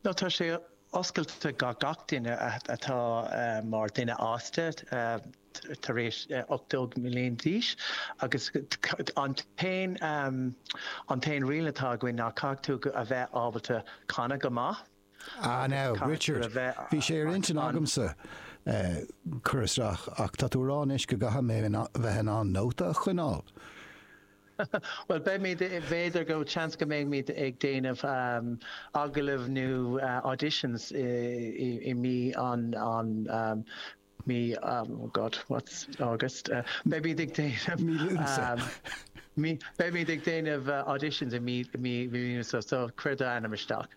No tá sé oscailte do gach duine atá mar duine fhásta tar éis ocht déag mbliain d'aois agus an t-aon riail atá againn ná caithfidh tú a bheith ábalta canadh go maith. Ah now, Richard, bhí sé ar intinn agamsa cur isteach ach tá tú ag rá anois go gcaithfidh mé bheith in ann nóta a choinneáil. Bhuel, beimid, b'fhéidir go, seans go mbeimid ag déanamh agallamh nó auditions i mí an, an, mí, oh God, what's August? Beimid ag déanamh, Mí Lúnasa. Beimid ag déanamh auditions i mí, mí, mí Lúnasa, so cuir d'ainm isteach.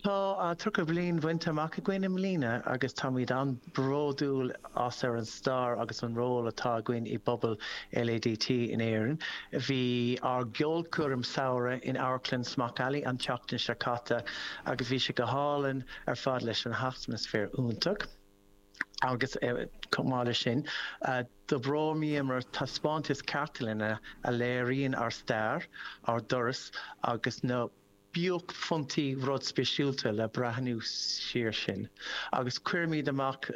Tá tríocha bhliain bhainte amach againn i mbliana agus táimid an-bhródúil as ar an stair agus an ról atá againn i bpobal LADT in Éirinn. Bhí ár gceolchoirm samhraidh in Amharclann Smock Alley an tseachtain seo caite agus bhí sé go hálainn ar fad leis an atmaisféar iontach agus chomh maith leis sin d'oibríomar taispeántas cartlainne a léiríonn ár stair, ár dturas agus na. buaicphointí rud spéisiúlta le breathnú siar sin agus cuirimid amach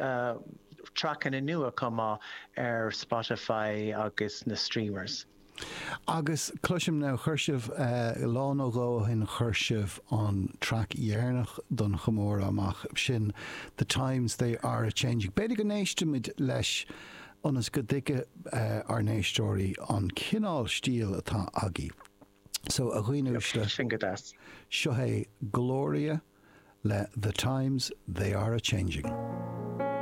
traiceanna nua chomh maith ar Spotify agus na streamers. Agus cloisim now chuir sibh lá nó dhó ó shin chuir sibh an traic dheireanach don chomóradh amach sin The Times They Are A Changing b'fhéidir go n-éistimid leis ionas go dtuigfidh ár n-éisteoirí an cineál stíl atá agaibh. So, a dhaoine uaisle, Sin go deas. seo é Gloria le The Times They Are A Changing.